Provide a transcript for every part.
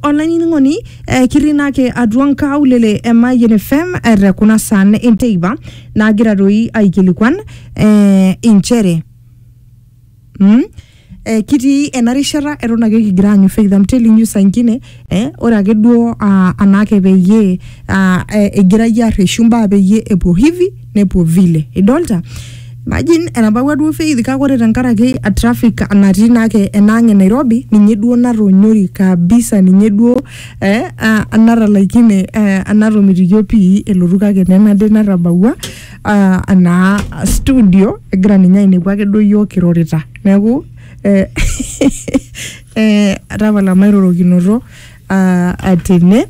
olainining'oni eh, kitii naake atua nkaulele e Mayian FM eh, te kuna saan enteipa naagira doi aikilikuan eh, inchere mm? Eh, kitii ena rishata eton ake kigira aanyu faith I'm telling you sankine eh, ore ake duo ah, anaake peyie ah, eh, egira yie arreshu mbaa peyie epuo hivi nepuo vile idolta imagine enapakua duo faith kake ore tenkaraki a traffic natii naake enaang e nairobi ninye duo natonyori kabisa ninye duo eh, ah, natalaikine eh, anatomitikio pii elotu kake nenade natabawua ah, anaa studio egira ninye ainepu ake duo yiok kirorita neeku eh, eh, tapala mairorokinoto uh, atene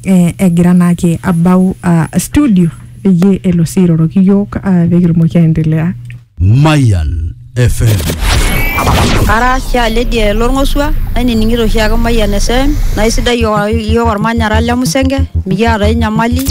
eh, egira naake abau uh, studio peyie elo sii airoroki yiok uh, pekitumoki aendelea Mayan FM. Ara sha lady lorngosua nainining'ito oshi ake Mayian FM naa isidai yo- yiok ormanyara le Musenge mikiata ai nyamali.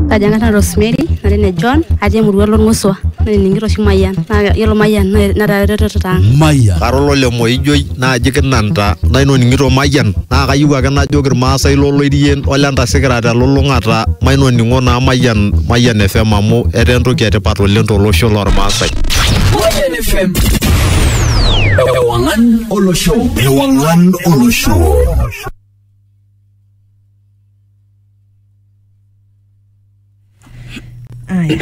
Kaji ang'as naa Rosemary natii ne John atii emurua lorngosua nainining'ito oshi Mayian naa yiolo Mayian naa- netaa eretoto ang'. Mayan. Karolo le Moijoi naaji kinanta nainoning'ito mayian naa kayieu ake najoki irmaasai loloirien ole ntasikira telulung'ata mainoning'o naa mayian mayian FM amu etaa entoki etipat oleng tolosho lormaasai. Mayian FM. Ewang'an olosho. Ewang'an olosho. Aya.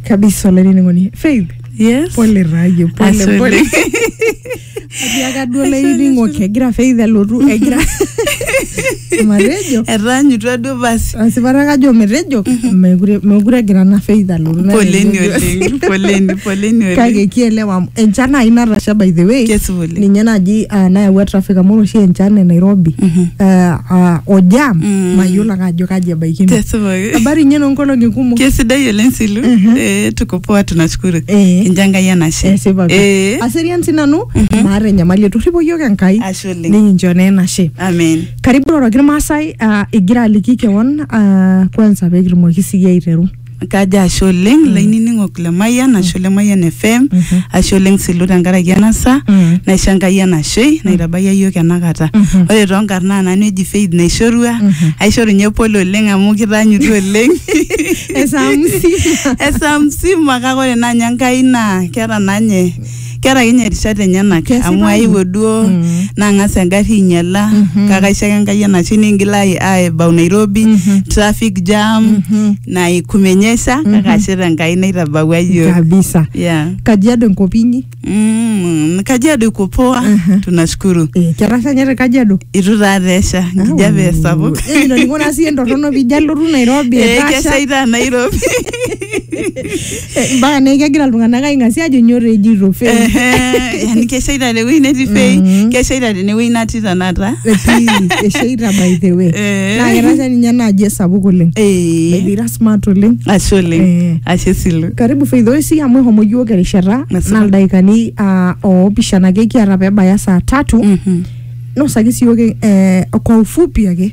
kabisa olainining'oni faith Yes. pole raye pole Ashe pole oleng. atiaka duo olainining'oki egira faith alotu egira matejo Etaanyutua duo basi. asipata kajo metejo mekure mekure egira na faith alotu na Poleni tejo- oleng. Poleni, poleni oleng. kake kielewa amu enchan nai natasha by the way Kesipa oleng. ninye naji ah, nayawua traffic amu ore oshi enchan e nairobi Mhm. ah, ah, o jam Mm. mayiolo ake ajo kaji ebaikino. Tesipaki. Habari inyi noonkolong'i kumok. Kesidai oleng Silu. Mhm. Eh, tuko poa tunashukuru. Eh. Kincho Enkai enashe. Esipa pi. Eh. Aserian sinanu, maata enyamali etorripo iyiook Enkai. Ashe oleng. Nikincho naa enashe. Amen. Karibu iroroki irmaasai ah, igira aliki kewon ah, kwanza pee kitumoki siyie aiteru. Kajo ashe oleng mm. lainining'ok le Mayian ashu le Mayian FM Mhm. ashe oleng silu tenkaraki ena saa Mm. naisho Enkai enashei naitabayia iyiook enakata. Mhm. Ore too nkarn naa nanu eji Faith naishorua Mhm. aishoru ninye pole oleng amu kitaanyutua oleng Esaa msima. esaa msima kake ore naa ninye Enkai naa keeta naa ninye keeta ake ninye rishat enyenak Kesipa amu ina. aewuo duo Mm. nang'as engarri ainyala Mhm. kake aisho ake enkai enashe ningil ai- aebau nairobi Mhm. traffic jam Mhm. naikumenyesha Mhm. kake ashe tenkai naitabawua yiok kabisa yeah. kajiado enkop inyi mm, kajiado iko poa Mhm. tunashukuru Eh, ketasha nye te kajiado itu taa tesha enkijape sapuk Eh, ino ningo naa siye entorrono pijo alotu nairobi Eh, etasha keshaita nairobi Eh, mpaka naa kegira iltung'anak aing'asia ajo nyoo taa ejito fei Ehe, yani keshaita tewueji netii fei Mhm. keshaita tenewueji natii tanakata Etii, esheita by the way Eh. naa ketasha ninye enaaji esapuk oleng Eh, Baby, ira smart oleng ashe oleng Eh. ashe silu karibu faith oisi amu ehomo yiok erishata Nasipa. naa ildaikani ah, oopishana ake kiata pebaya saa tatu Mhm. nosaki siyook eh, kwa ufupi ake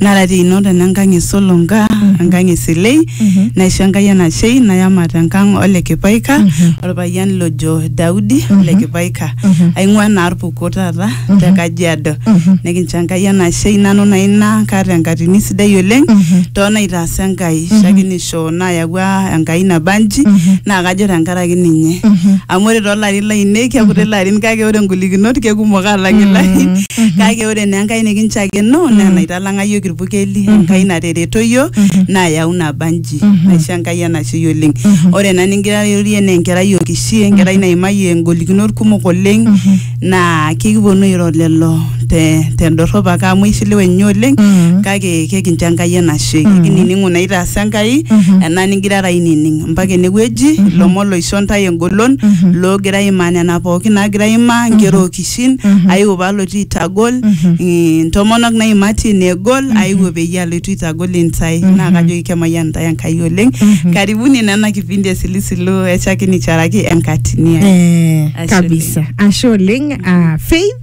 Nara tino tena nkang e Solonga, enkang e Silei, naisho Enkai enashei nayamat enkang ole Kipaika, olpayian lojo Daudi ole Kipaika. Aing'ua naa Irpuko taata te Kajiado. Nikincho Enkai enashei nanu naa ina kaata enkatini sidai oleng too naitaasa Enkai, shakenisho nayawua Enkai nabanji naa kajo tenkaraki ninye. Amu ore too larin lainei, kekuti ilarin kake ore ingolikinot kekumok aalang ilarin kake ore naa enkai nikinchakeno naa enaitalang'a yiok irpukeli enkai natereto yiok naa yau naba nji naisho enkai enashei oleng ore ena ningira airorie naa enkerai okishi enkerai naimayie ingolikinot kumok oleng naa kekiponu airo lelo te tendorrop ake amu eishiliwe ninye oleng kake kekincho enkai enashe kinining'u naitaasa enkai ena ningirara ainining mpaka enewueji ilomon loisho intae engolon loogira aimaa nena pookin naagira aimaa inkera okishi iwuejitin Mhm. aiwuo paalotu aitagol Mhm. eh, ntomonok naimati negol Mhm. aiwuo peyie alotu aitagol intae Mhm. naa kajoki kemayian intae Enkai oleng Mhm. karibuni nena kipindi esilisilu echaki nicharaki enkatini ai Eh, Ashe kabisa ashe oleng ah, faith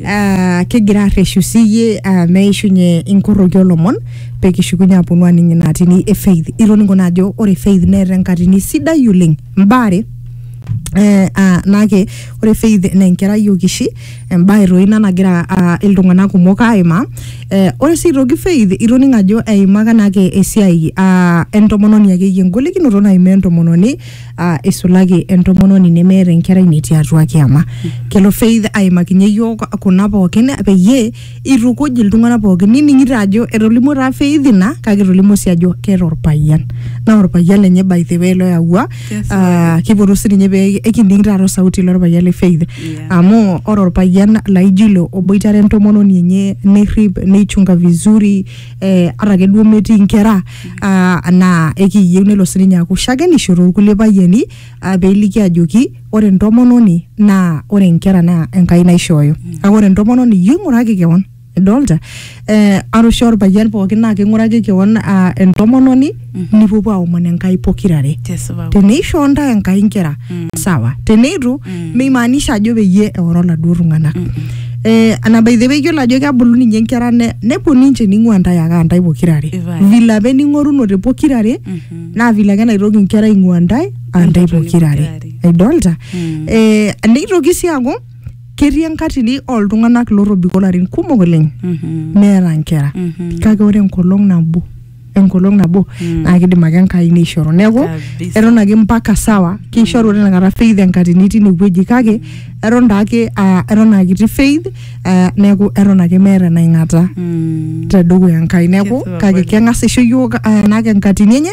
ah, kigira arreshu siyie ah, meishunye inkorroki olomon pekishukunye aponu aning inatini e faith itoning'o naa ajo ore faith neeta enkatini sidai oleng mbaare eh, ah, nake ore faith na enkerai okishi embae toi ina nagira ah, iltung'anak kumok aimaa eh, ore sii aitoki faith itoning ajo eimaka nake esiai ah, entomononi akeyie engolikinoto naimaa entomononi ah, isulaki entomononi nemeeta enkerai netii atua kiama kelo faith aimakinye yiok kuna pookin peyie itukuj iltung'anak pookin nining'ito ajo etolimuo taa Faith ina kake etolimuo sii ajo keeta orpayian naa orpayian lenye by the way loyawua Yes, Ah, kipotu sininye pee ekining taata osauti lorpayian le Faith Yeah. amu ore orpayian laijo ilo oboitare entomononi enye nerrip neichunga vizuri eh, ata ake duo metii inkera ah, naa ekiyieu nelo sininye aaku shakenisho torkulie payiani ah, peiliki ajoki ore entomononi naa ore inkera naa enkai naishooyo kake ore entomononi iyieu ing'uraki kewon idolta eh, arusha orpayian pookin naa king'uraki kewon ah, entomononi nipuopuo aomon enkai pokirare Tesipa. teneishoo ntae enkai inkera sawa teneitu meimaanisha ajo peyie eoro laduo tung'anak Eh, ana by the way iyiolo ajo kebulu ninye inkera ne- nepuo ninche ning'ua ntae ake antae pokirare Ipae. vile apa ening'orunote pokirare naa vile ake enaitoki inkera aing'ua ntae antae pokirare aidolta Mm. eh, neitoki sii aaku ketii enkatini oltung'anak lotobiko larin kumok oleng Mhm. meeta nkera Mhm. kake ore enkolong nabo enkolong nabo Mm. naa kidim ake enkai neishoru neeku Kabisa. eton ake mpaka sawa keishoru tinakata faith enkatini tine wueji kake eton taake ah, eton akiti faith ah, neeku eton ake meeta enaing'ata Mm. tedukuya enkai neeku Kesipa kake kweli. keng'as aisho yiok ah, enake enkatini enye